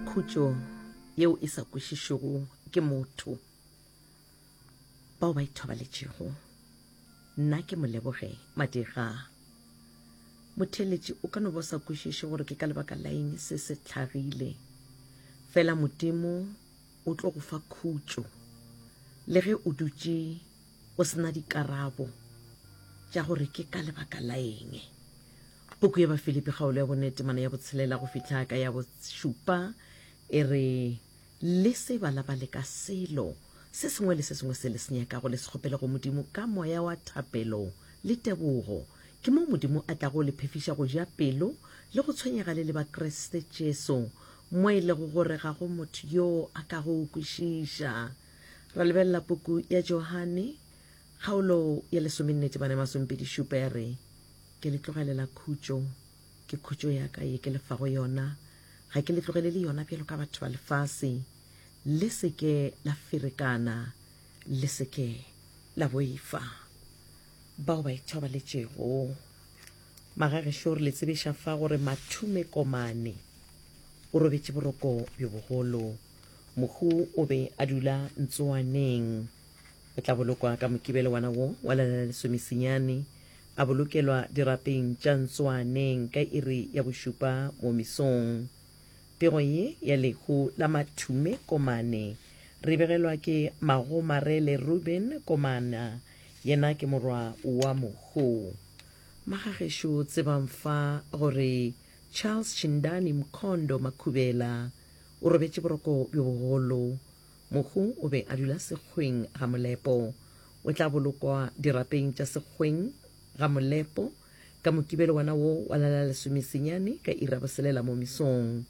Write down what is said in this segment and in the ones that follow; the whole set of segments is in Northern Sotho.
khutšo yeo e sa kwešišwego ke motho bao ba ithobaletšego nna ke moleboge madira motheletši o ka no ba sa kwešiše gore ke ka lebaka la eng se se tlhagile fela modimo o tlo go fa khutšo le ge o dutše o se na dikarabo tša gore ke ka lebaka la eng. Puku ya Bafilipi kgaolo ya bone temana ya botshelela go fihla ka ya bošupa e re, Le se balabale ka selo se sengwe le se sengwe se le se nyakago, le se kgopele go Modimo ka moya wa thapelo le tebogo. Ke moo Modimo a tlago le phefiša go ja pelo le go tshwenyega le le ba Kriste Jesu, mo e lego gore ga go motho yoo a ka go kwešiša. Ra lebelela puku ya Johane, kgaolo ya lesomennete bane masompedi šupa ya re, Ke le tlogelela khutšo, ke khutšo ya ka ye ke le fago yona, ga ke le tlogelele yona bjalo ka batho ba lefase, le se ke la ferekana, le se ke la boifa. Bao ba ithobaletšego. Magagešo o re le tsebiša fa gore Mathume Komane o robetše boroko bjo bogolo. Mohu o be a dula ntsoaneng. O tla bolokwa ka mokibelo wana wo wa lela la lesomesenyane, a bolokelwa dirapeng tša ntsoaneng ka iri ya bošupa mo mesong. Pego ye ya lehu la mathume komane re begelwa ke Magomarele Ruben Komana, yena ke morwa wa Mohu. Magagešo tsebang fa gore Charles Chindani Mkhondo Makhubela, O robetše boroko bjo bogolo. Mohu o be a dula sekgweng ga molepo. O tla bolokwa dirapeng tša sekgweng ga molepo ka Mokibelo wona wo wa la la lesomesenyane ka iri ya boselela mo mesong.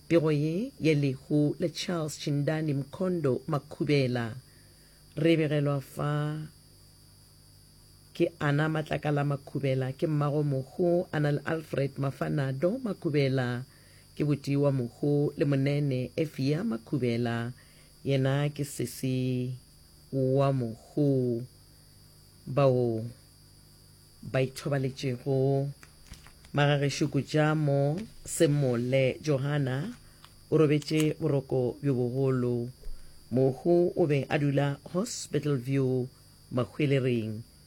Pego ye ya lehu la Charles Chindani Mkhondo Makhubela re e begelwa fa ke Ana Matlakala Makhubela, ke mmago Mohu Ana le Alfred Mafanado Makhubela. Ke Botiwa Mohu le Monene Efia Makhubela, yena ke sesi wa Mohu, bao ba ithobaletšego Magagešo Kujamo Semole. Johana o robetše boroko bjo bogolo. Mohu o be a dula Hospital View, Mahwelering,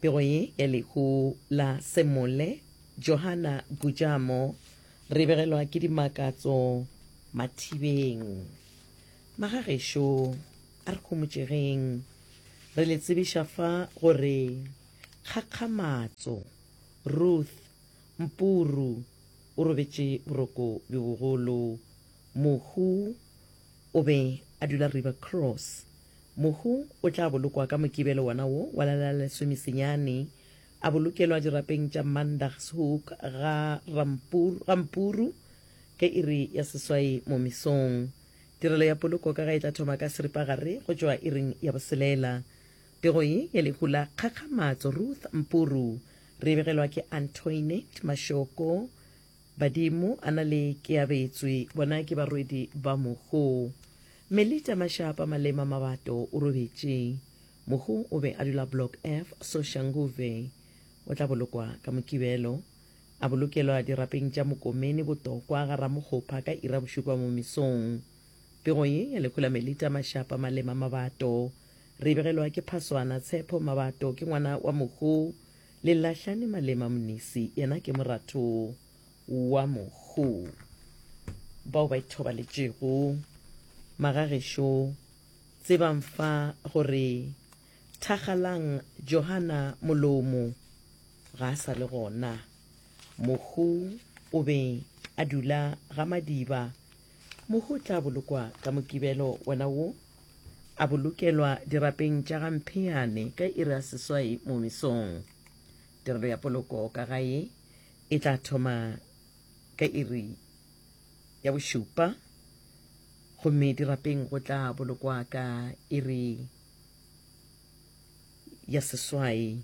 Pego ye ya lehu la Semole, Johana Gujamo. Re begelwa ke dimakatso mathibeng. Magagešo, a re homotšegeng. Re le tsebiša fa gore Kgakgamatso, Ruth, Mpuru o robetše boroko bjo bogolo. Mohu o be a dula River Cross. Mohu o tla bolokwa ka Mokibelo wona wo wa la la lesomesenyane, a bolokelwa dirapeng tša Mandagshoek ga Rampur, ga Mpuru, ge iri ya seswai mo mesong. Tirelo ya poloko ka ga e tla thoma ka seripagare go tšwa iring ya boselela. Pego ye ya lehu la kgakgamatso Ruth Mpuru re e begelwa ke Antoinette Mashoko. Badimo a na le ke abetswe. Bona ke barwedi ba mogo. Melita Mashapa Malema Mabato o robetše. Mogo o be a dula Block F, Soshanguve. O tla bolokwa ka Mokibelo. A bolokelwa dirapeng tša Mokomeni Botokwa ga Ramokgopha ka ira bošupa mo mesong. Pego ye ya lehu la Melita Mashapa Malema Mabato re e begelwa ke Phaswana Tshepo Mabato ke ngwana wa Mogo Le lahlane malema Mnisi, yena ke moratho wa mohu. Bao ba ithobaletšego. Magagešo, tsebang fa gore thakgalang Johana Molomo ga a sa le gona. Mohu o be a dula ga Madiba. Mohu o tla bolokwa ka Mokibelo wena wo. A bolokelwa dirapeng tša ga Mpheane ka iri ya seswai mo mesong. Tirelo ya poloko ka gae e tla thoma ka iri ya bošupa gomme dirapeng go tla bolokwa ka iri ya seswai.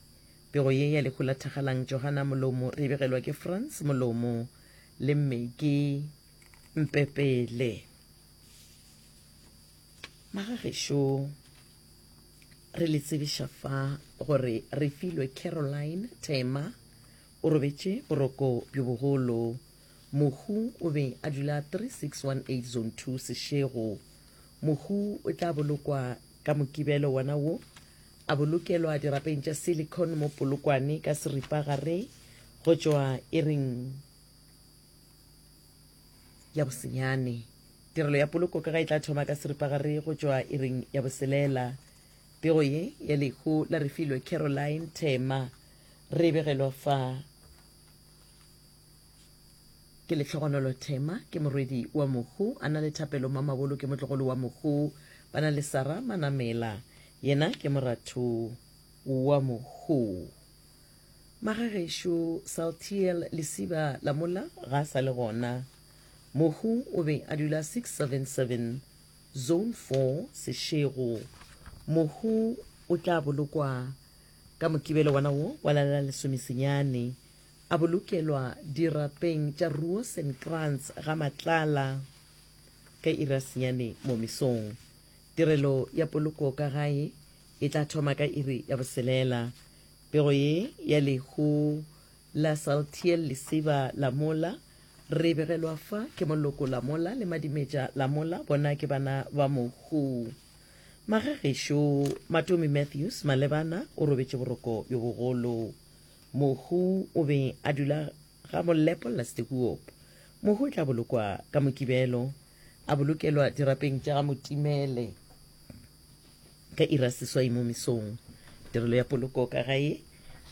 Pego ye ya lehu la thakgalang Johana Molomo re e begelwa ke Frans Molomo le Maggie Mpepele. magagešo re le tsebiša fa gore re filwe caroline tema o robetše boroko bjo bogolo mohu o be a dula 3618 zone 2 sešego mohu o tla bolokwa ka mokibelo wona wo a bolokelwa dirapeng tša silicon mo polokwane ka seripagare go tšwa e reng ya bosenyane. Tirelo ya poloko ka ga e tla thoma ka seripagare go tšwa iring ya boselela. Pego ye ya lehu la Refilwe Caroline Thema re e begelwa fa ke Lehlogonolo Thema ke morwedi wa mohu, a na le Thapelo Mamabolo ke motlogolo wa mohu, ba na le Sara Manamela yena ke moratho wa mohu. Magagešo Saltiel Lesiba Lamola ga a sa le gona. Mohu o be a dula 677 Zone 4 Seshego. Mohu o tla bolokwa ka Mokibelo wana wo wa la la lesomesenyane, a bolokelwa dirapeng tša Roosenkrantz ga Matlala ka iri ya senyane mo mesong. Tirelo ya poloko ka gae e tla thoma ka iri ya boselela. Pego ye ya lehu la Saltiel Lesiba la mola, re e begelwa fa ke Moloko la mola le Madimetša la mola, bona ke bana ba mohu. Magagešo Matomi Matthews Malebana o robetše boroko bjo bogolo. Mohu o be a dula ga Molepo Lastekuop. Mohu o tla bolokwa ka Mokibelo, a bolokelwa dirapeng tša ga Motimele. Ka iri ya seswai mo mesong, tirelo ya poloko ka gae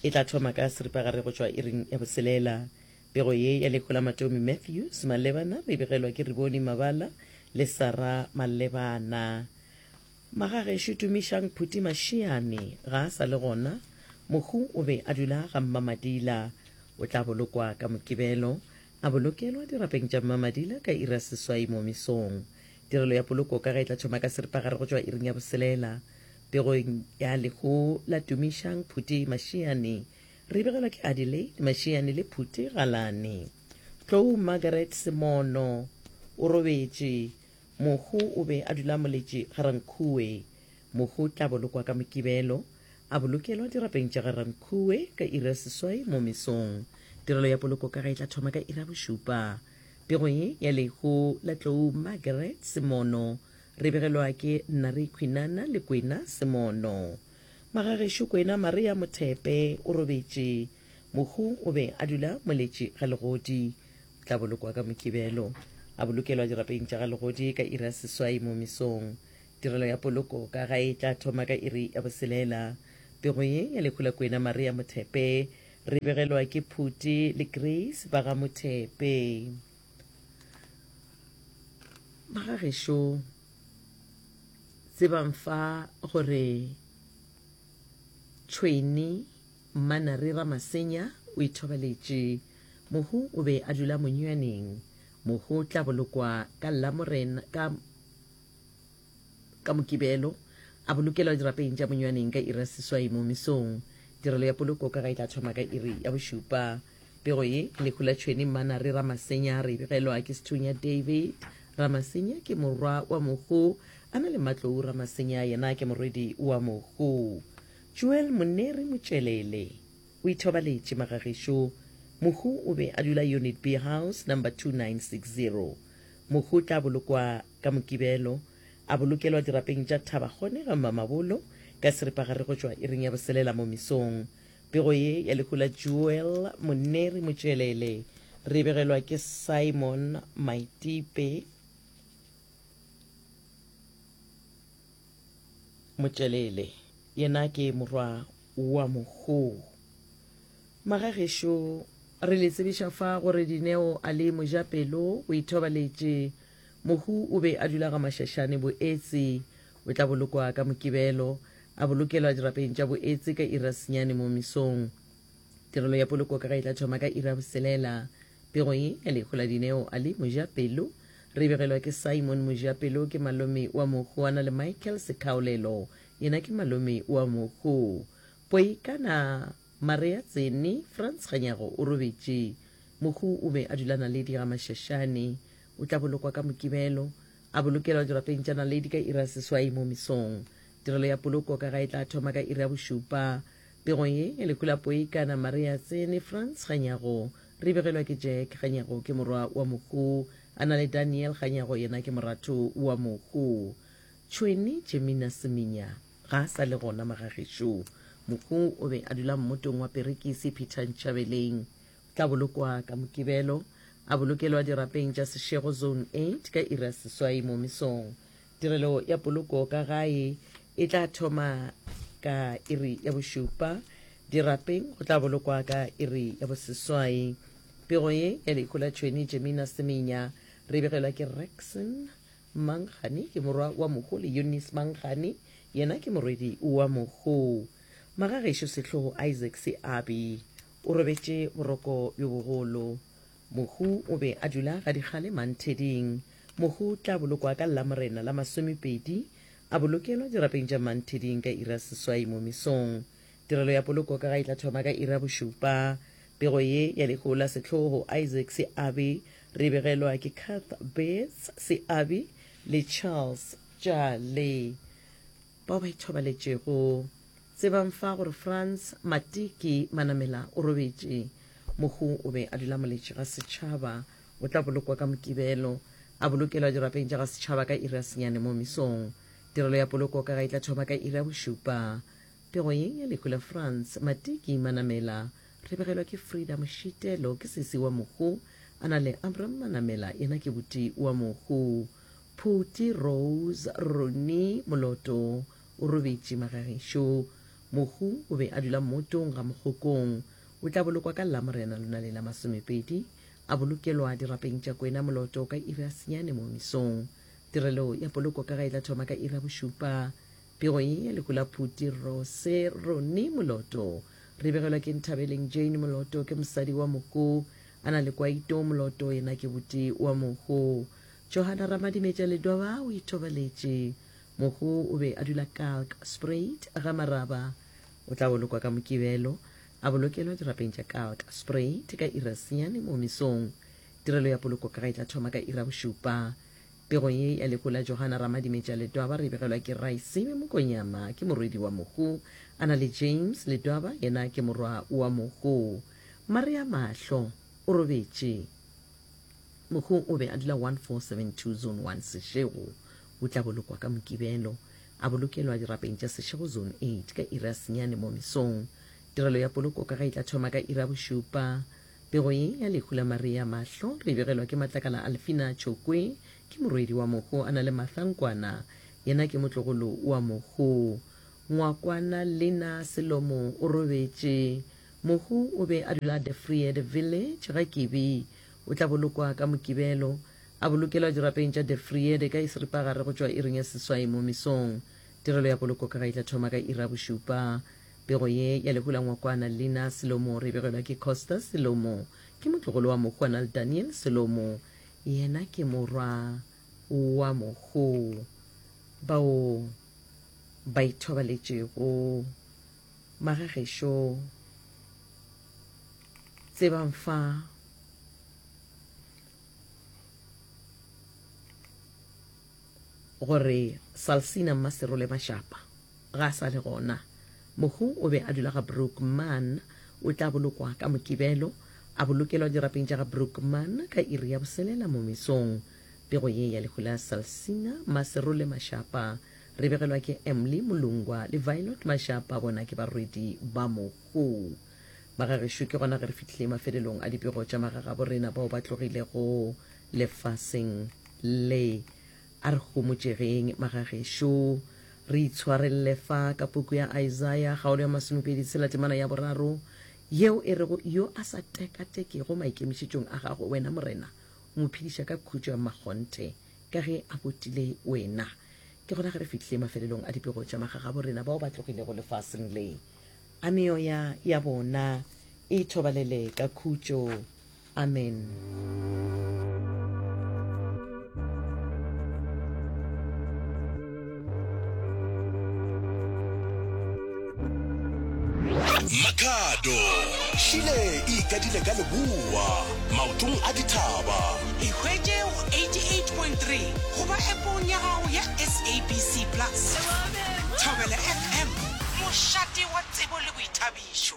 e tla thoma ka seripagare go tšwa iring ya boselela. Pego ye ya Lehu la Matomi Matthews Malebana re e begelwa ke Rebone Mabala le Sara Malebana. Magagešo Tumišang Phuti Mašiane ga a sa le gona. Mohu o be a dula ga Mmamadila. O tla bolokwa ka Mokibelo, a bolokelwa dirapeng tša Mmamadila ka iri ya seswai mo mesong. Tirelo ya poloko ka ge e tla thoma ka seripagare go tšwa iring ya boselela. Pegong ya lehu la Tumišang Phuti Mašiane re begelwa ke Adelaide Mašiane le Phuti Galane. Tlou Margaret Semono o robetše, mohu o be a dula moletše ga Rankhuwe. Mohu o tla bolokwa ka Mokibelo, a bolokelwa dirapeng tša ga Rankhuwe ka iri ya seswai mo mesong. Tirelo ya poloko ka ge e tla thoma ka iri ya bošupa. Pego ye ya lehu la tlou Margaret Semono re begelwa ke Nari Khwinana le Kwena Semono. Magagešo Kwena Maria Mothepe o robetše. Mohu o be a dula Moletši ga Legodi. O tla bolokwa ka Mokibelo. A bolokelwa dirapeng tša ga Legodi ka iri ya seswai mo mesong. Tirelo ya poloko ka gae e tla thoma ka iri ya boselela. Pego ye ya lehu la Kwena Maria Mothepe Re begelwa ke Phuti le Grace ba ga Mothepe. Magagešo, tsebang fa gore Tšhweni Mmanare Ramasenya o ithobaletše. Mohu o be a dula monywaneng. Mohu tla bolokwa ka Lamorena ka Ka Mokibelo, a bolokelwa dirapeng tša monywaneng ka iri ya seswai mo mesong. Tirelo ya poloko ka ga e tla thoma ka iri ya bošupa. Pego ye, Lehu la Tšhweni Mmanare Ramasenya re e begelwa ke Sethunya David Ramasenya ke morwa wa Mohu a na le Mmatlou Ramasenya yena ke morwedi wa Mohu. Joel Moneri Motšelele o ithobaletše Magagešu. Mohu o be a dula Unit B House number 2960. Mohu o tla bolokwa Ka Mokibelo, a bolokelwa dirapeng tša thaba gone ga Mmamabolo ka seripagare go tšwa iring ya boselela mo mesong. Pego ye ya lehu la Joel Moneri Motšeelele re e begelwa ke Simon Maitipe Motšeelele, yena ke morwa wa Mokgoo. Magagešo. Re le tsebiša fa gore Dineo a le mojapelo, o ithobaletše. Mohu o be a dula gamašašane boetse o tla bolokwa ka Mokibelo, a bolokelwa dirapeng tša boetse ka iri ya senyane mo mesong. Tirelo ya poloko ka ga e tla thoma ka iri ya boselela. Pego ye ya lehu la dineo a le Mojapelo re e begelwa ke Simon Mojapelo, ke malome wa mohu, a na le Michael Sekaolelo, yena ke malome wa mohu. Poikana. Marea Tsene, Frans Kganyago o robetše. Mohu o be a dula Naledi ga Mashashane. O tla bolokwa ka Mokibelo, a bolokelwa dirapeng tša Naledi ka iri ya seswai mo mesong. Tirelo ya poloko ka ga e tla thoma ka iri ya bošupa. Pego ye ya lehu la Poikana, Marea Tsene, Frans Kganyago, re e begelwa ke Jack Kganyago, ke morwa wa mohu. A na le Daniel Kganyago, yena ke moratho wa mohu. Tšhwene Jemina Seminya. Ga a sa le gona magagešo. Mohu o be a dula mmotong wa perekisi Peter Ntšhabeleng. O tla bolokwa ka Mokibelo, a bolokelwa dirapeng tša Seshego Zone 8 ka iri ya seswai mo mesong. Tirelo ya poloko ka gae e tla thoma ka iri ya bošupa. Dirapeng go tla bolokwa ka iri ya boseswai. Pego ye ya lehu la Tšhweni Jemina Semenya re e begelwa ke Rexon Mangani ke morwa wa Mokgoo le Eunice Mangani yena ke morwedi wa Mokgoo. Magagešo Sehlogo Isaac Seabi o robetše boroko bjo bogolo. Mokgoo o be a dula ga dikgale Mantheding. Mokgoo o tla bolokwa ka Lamorena la masomepedi, a bolokelwa dirapeng tša Mantheding ka iri ya seswai mo mesong. Tirelo ya poloko ka ga e tla thoma ka iri ya bošupa. Pego ye ya lehola sehlogo Isaac Seabi re e begelwa ke Kath Beetz Seabi le Charles Jale bao ba ithobaletšego. Tsebang fa gore Frans Matiki Manamela o robetše. Mohu o be a dula moletši ga setšhaba. O tla bolokwa ka Mokibelo, a bolokelwa dirapeng tša ga setšhaba ka iri ya senyane mo mesong. Tirelo ya poloko ka ga e tla thoma ka iri ya bošupa. Pego ye ya lehu la France, Matiki Manamela, re begelwa ke Frida Mošitelo, ke sesi wa Mohu, a na le Abram Manamela, yena ke buti wa Mohu. Phuti Rose Roni Moloto o robetše magagešo. Mohu o be a dula motong ga Mokgokong. O tla bolokwa ka Lamorena lona le la masomepedi, a bolokelwa dirapeng tša Kwena Moloto ka iri ya senyane mo misong. Tirelo ya poloko ka ga e tla thoma ka iri ya bošupa Pego ye ya lehu la Phuti Rro Se Ronnie Moloto re begelwa ke Nthabeleng Jane Moloto ke mosadi wa Moko a na le Kwaito Moloto yena ke boti wa Mokgo. Johanna Ramadimetša Ledoba o itobaletše. Mokgo o be a dula Kalk Spruit ga Maraba. O tla bolokwa ka Mokibelo a bolokelwa dirapeng tša Kalk Spruit ka iri ya senyane mo mesong. Tirelo ya poloko ka ga e tla thoma ka iri ya bošupa. Pego ye ya lekola Johana Ramadimetša Letwaba re e begelwa ke Raisebe Mokonyama, ke morwedi wa Mohu. A na le James Letwaba, yena ke morwa wa Mohu. Maria Mahlo, o robetše. Mohu o be a dula 1472 Zone 1 Seshego. O tla bolokwa ka Mokibelo. A bolokelwa dirapeng tša Seshego Zone 8 ka iri ya senyane mo mesong. Tirelo ya poloko ka ga e tla thoma ka iri ya bošupa. Pego ye ya lehu la Maria mahlo re e begelwa ke Matlakala Alfina Tšokwe, ke morwedi wa mohu a na le Martha Nkwana, yena ke motlogolo wa mohu. Ngwakwana Lina Selomo o robetše. Mohu o be a dula De Vryheid Village, ga Kibi. O tla bolokwa ka Mokibelo. A bolokelwa dirapeng tša De Vryheid ka Esripagare go tšwa iring ya seswai mo mesong. Tirelo ya poloko ka ga e tla thoma ka iri ya bošupa. Pego ye ya lehu la ngwakwana Lina Selomo re e begelwa ke Costa Selomo. Ke motlogolo wa mohu a na le Daniel Selomo. Yena ke morwa wa mohu bao ba ithobaletšego magagešo tse ba mfa gore Salsina Mmaserole Mashapa ga a sa le gona. Mohu o be a dula ga Brookman. O tla bolokwa ka Mokibelo, a bolokelwa dirapeng tša ga Brookman ka iri ya boselela mo mesong. Pego ye ya lehu la Salsina Mmaserole Mashapa re begelwa ke Emly Molungwa le Violet Mashapa, bona ke barwedi ba mohu ba ga gešo. Ke gona ge re fihlile mafelelong a dipego tša magagabo rena bao ba tlogilego lefaseng. Lle, A re homotšegeng, magagešo. Re itshwarelele fa ka puku ya Aisaia, kgaolo ya masomepedi tshela, temana ya boraro, yeo e rego, Yo a sa tekatekego maikemišetšong a gago, wena Morena, o mo phediša ka khutšo ya mmakgonthe, ka ge a botile wena. Ke gona ge re fihlile mafelelong a dipego tša magagabo rena bao ba tlogilego lefaseng le, a meoya ya bona e thobalele ka khutšo. Amen. makhado šile e ikadile ka leboa maotong a dithaba ikgwetše go 88.3 goba epong ya gago ya sabc plus thobela fm mošate wa tsebo le boithabišo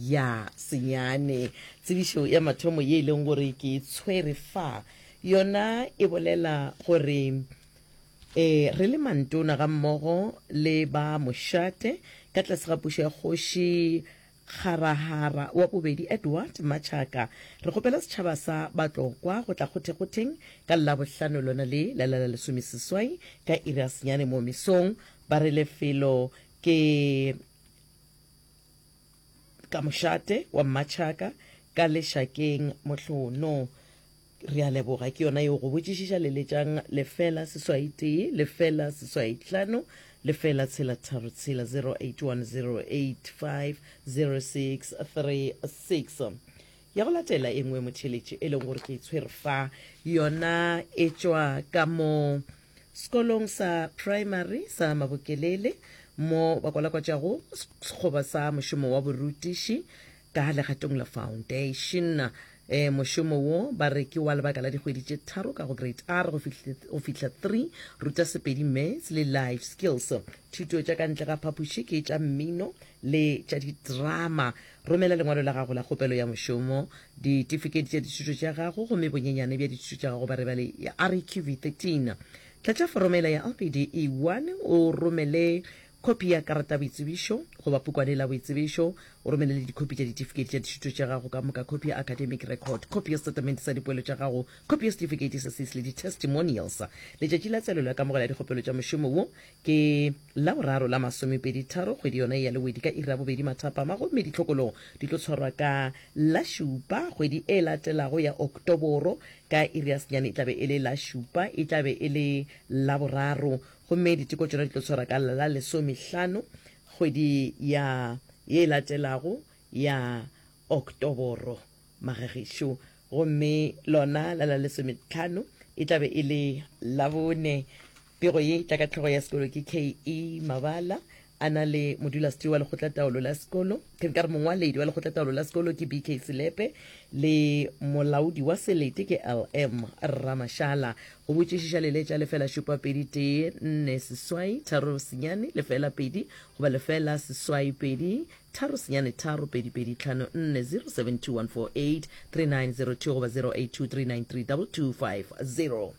Ya senyane. Tsebišo ya mathomo ye e leng gore ke e tshwere fa, yona e bolela gore e, re le mantona ga mmogo le ba mošate ka tlase ga pušo ya Kgoši Kgarahara wa Bobedi Edward Machaka, re kgopela setšhaba sa Batlokwa go tla kgothekgotheng ka Labohlano lona le la la la lesomeseswai ka iri ya senyane moo mesong. Ba re lefelo ke. ka mošate wa mmatšhaka ka lešakeng mohlono re a leboga ke yona yeo go botšišiša leletšang lefela seswai tee lefela seswai tlhano lefela tshela tharo tshela 0810850636 Ya go latela e nngwe motheletše, e leng gore ke e tshwere fa, yona e tšwa ka mo sekolong sa praemari sa Mabokelele, mo ba kwalakwatšago sekgoba sa mošomo wa borutiši ka legatong la Foundation. E, mošomo wo ba re ke wa lebaka la dikgwedi tše tharo ka go Grade R go fihla, go fihla 3, Ruta Sepedi, Maths le Life Skills. Thuto tša ka ntle ga phapoši ke tša mmino, le tša diterama. Romela lengwalo la gago la kgopelo ya mošomo, ditifiketi tša dithuto tša gago gomme bonyenyane bja dithuto tša gago bare bale ya REQV 13. Tlatša foromo yela ya LPD E 1 o romele khopi ya karata ya boitsebišo goba pukwane la boitsebišo. O romele le dikhopi tša ditifiketi tša dithuto tša gago ka moka, khopi ya academic record, khopi ya setatamente sa dipoelo tša gago, khopi ya setifikeiti sa SIS le di-testimonials. Letšatši la tswalelo ya kamogelo ya dikgopelo tša mošomo wo Ke Laboraro la masomepeditharo kgwedi yona e ya Lewedi ka iri ya bobedi mathapama gomme ditlhokologo di tlo tshwarwa ka la šupa kgwedi e latelago ya Oktoboro ka iri ya senyane e tla be e le la šupa e tla be e le Laboraro gomme diteko tšona di tlo tshwarwa ka la lesomehlano kgwedi ya ye e latelago ya Oktoboro. Magagešo, gomme lona la la lesometlhano e tla be e le Labone. Pego ye e tla ka tlhogo ya sekolo ke KE. Mabala a na le modulasetilo wa lekgotlataolo la sekolo, ke nka re mongwaledi wa lekgotlataolo la sekolo ke BK Selepe le molaodi wa selete ke LM Rramashala. Go botšišiša leletša lefela šupa pedi tee nne seswai tharo senyane lefela pedi goba lefela seswai pedi tharo senyane tharo pedi pedi tlhano nne 0721483902 goba 0823932250.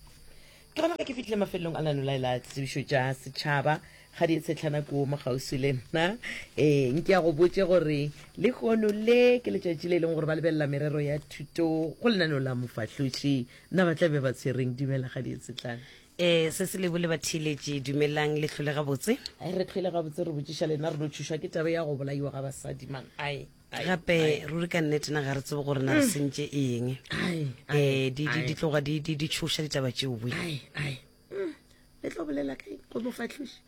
Ke gona ge ke fitlhile mafelelong a lanolae la tsebišo tša setšhaba ga di etshetlhana kuo mo kgauswi le nna e nke ya go botše gore le kgono le ke letšatši le e leng gore ba lebelela merero ya thuto go lenaneo la mofahloši na ba tla be ba tshwereng dumela ga di etsetlhana ee se se lebo le bathiletše dumelang le tlhole gabotse ai re tlhole gabotse re botšiša lena re no thušwa ke tabe ya go bolaiwa ga basadi man ai gape ruri ka nnete na ga re tsebe gore na re mm. sentše eng um di tloga di tšhoša ditaba tšeo boi mm. le tlo bolela kae go mo fatlhoši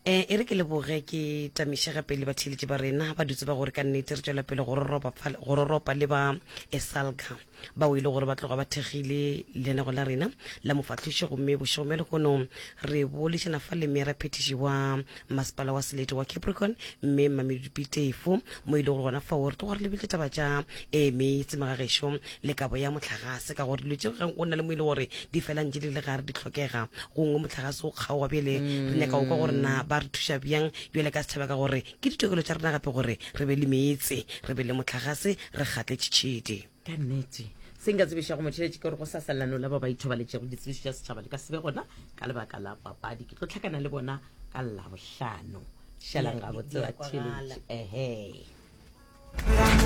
E, e re ke leboge ke tamišega pele batheeletši ba rena ba dutse ba gore ka nnete re tšwela pele go roropa fa- go roropa le ba esalka bao e le gore ba tloga ba thekgile leanego la rena la mofahloši gomme bošego bja lehono re bolešana fa le meera phetiši wa masepala wa selete wa capricorn mme mamedipitefo mo e le gore gona fao re tloga re lebile taba tša e meetse magagešo le kabo ya mohlagase ka gore dilo tše ge o na le mo e le gore di fela ntše di le gare di tlhokega gongwe mohlagase o kgaoga bjele mm. re nyaka o kwa gore na ba re thuša bjang bjale ka setšhaba ka gore ke ditokelo tša rena gape gore re be le meetse re be le mohlagase re gatle tšhitšhidi ka nnete se nka tsebiša go motšheletše ke gore go sa salelano la ba ba ithobaletšego ditsebišo tša setšhaba le ka sebe gona ka lebaka la papadi ke tlo tlhakana le bona ka labohlano šalang gabotse wa tšheletše ehe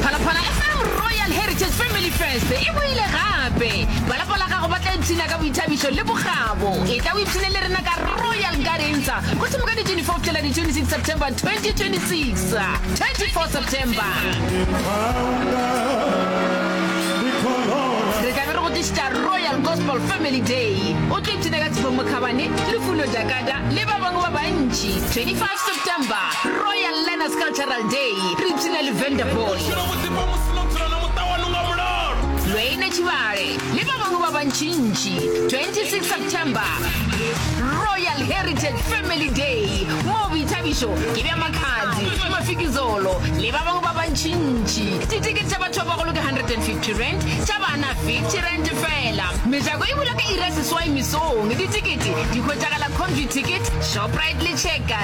Phalaphala FM Royal Heritage Family Fest e boile gape. Ba lapa la gago ba tla ipshina ka boithabišo le bokgabo. E tla o ipshine le rena ka Royal Gardens go thoma ka di 24 fihla di 26 September 2026. 24 September. Re tla be re go tlišitša Royal Gospel Family Day. O tlo ipshina ka Tshifo Mokhabane, Lufuno Jakata le ba bangwe ba bantši. 25 September. Royal Learners Cultural Day, Regina Lavender Boy, Lweine Tšhibale le ba bangwe ba bantšintši, 26 September, Royal Heritage Family Day, moo boithabišo ke bja Makhadzi, Mafikizolo le ba bangwe ba bantšintši. Ditekete tša batho ba bagolo ke R150, tša bana R50 feela. Mejako e bula ka iri ya seswai mesong. Ditekete di hwetšagala Conviticket, Shoprite le Checkers.